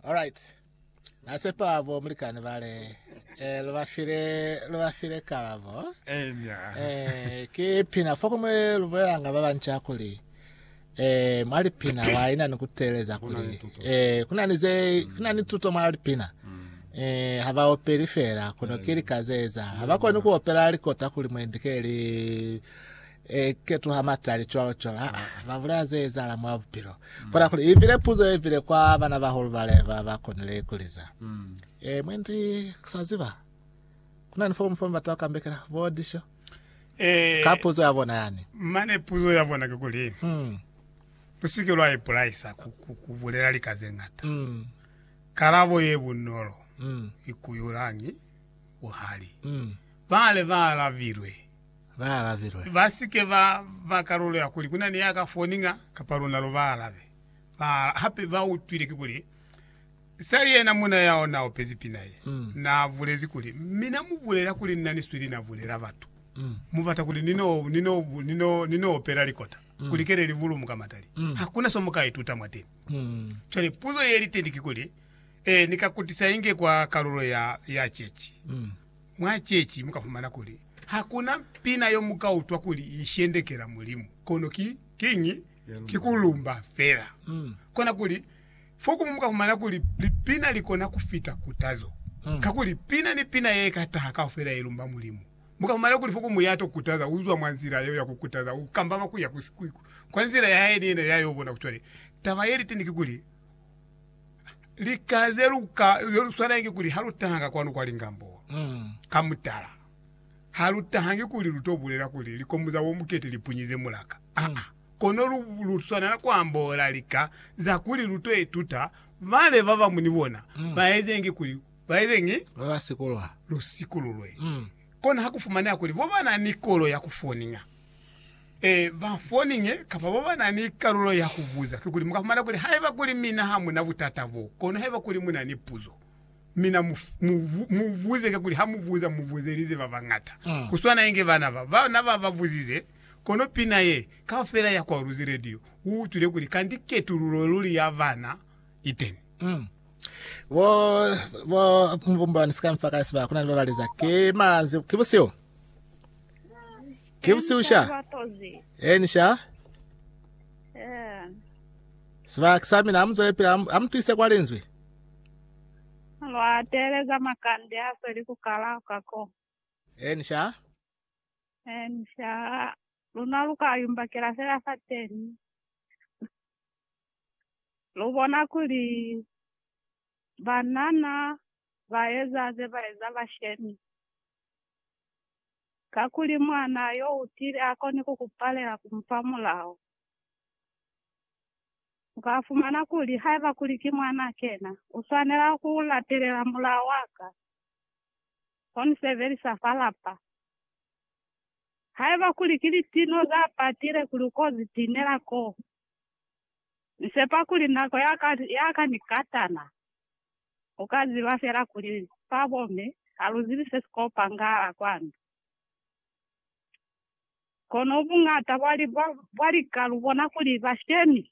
Alright. Na sepa bo mulikani bale eh lo ba file lo ba file kalabo. Enya. Eh ke pina fo kumwe lo bolanga ba bantša kuli eh mwa lipina wa ina ni ku teleza kuli eh kuna ni ze kuna ni tuto mwa lipina. Eh ha ba opeli fela kono ke lika ze eza. Ha ba koni ku opela likota kuli mwendi ke li e ketuha matali cwalo cwalo ha ba bulaya ze ezahala mwa bupilo mm. kona kuli ivile puzo ye vile kwa bana bahulu bale ba ba konile ikuliza mm. e mwendi kusaziba kuna ni fomu fomu bata kambekela bo disho e ka puzo ya bona yani mane puzo ya bona ke kuli mm. lusike lwa ipulaisa kubulela likaze ngata mm. karabo ye bunolo mm. ikuyulangi buhali mm. bale ba alabilwe ba alabilwe. Ba si ke ba ba kalulo ya kuli ku na ni ya ka foni nga kapa luna lu ba alabe. Ba hape ba utwile kikuli Sally yena muna ya ona a opezi pina ye, na bulezi kuli, Mina mu bulela kuli nna ni swili na bulela batu. Mu bata kuli ni no, ni no, ni no, ni no opela likota ku likele li bulumu ka matali. Ha ku na so mu ka ituta mwateni. Cwale puzo ye li teñi kikuli, Ee, ni ka kutisa inge kwa kalulo ya, ya ceci? Mwa ceci mu ka fumana kuli ha ku na pina yo mu ka utwa kuli i shendekela Mulimu, kono ki kiñi? Ki ku lumba fela. Kona kuli, fokumu mu ka fumana kuli lipina li kona ku fita kutazo, kakuli pina ni pina ye ka taha kaufela ye lumba Mulimu. Mu ka fumana kuli fokumu ya to kutaza u zwa mwa nzila yeo ya ku kutaza, u kambama ku ya kwa nzila ya hae ni yena ya yo bona. Cwale, taba ye li teñi ki kuli, lika ze luka ze lu swanangi kuli ha lu taha ka kwanu kwa lingambo mm. ka mutala ha lu tahangi kuli lu to bulela kuli likomu za bomukete li punyize mulaka mm. aa kono lu, lu swanela ku ambola lika za kuli lu to ituta bale ba bamu ni bona mm. ba ezengi kuli ba ezengi ba ba sikulwa lu sikululwe mm. kono ha ku fumaneha kuli bo ba na ni kolo ya ku foninga Ee, ba foninge kapa ba ba na ni kalulo ya ku buza. Kikuli, mu ka fumana kuli haiba kuli mina ha mu na butata bo, kono haiba kuli mu na ni puzo, mina mu, mu, mu buze. Kakuli ha mu buza, mu buzelize ba bañata. Ku swana inge bana ba, ba na ba ba buzize. Kono pina ye, kaufela ya kwaluzi radio u utwile kuli kanti ketululo luli ya bana i teni. Bo, bo, Mubumbulani, si ka nfa ka sibaka, ku na ni ba ba liza, Ki manzhi, ki busihu. Ki busihu sha. Eni sha. Sibaki sa mina amuzwele pila amutise kwa linzwi. Lwa teleza makande a sweli ku kala kako. Eni sha. Eni sha. Luna luka yumbakela fela fateni. Lubona kuli banana baeza ze baeza bashemi. kakuli mwanaa yo u tile a koni ku ku palela ku mu fa mulao. U ka fumana kuli, Haiba kuli ki mwanaa kena, u swanela ku latelela mulao wa ka, ko ni sebelisa fa lapa. Haiba kuli ki litino za patile kuli u ko zi tinela koo, ni sepa kuli nako ya ka, ya ka ni katana. U ka ziba fela kuli fa boMe ha lu zibi se si ko pangahala kwanu. Kono buñata bwa lika lu bona kuli bashemi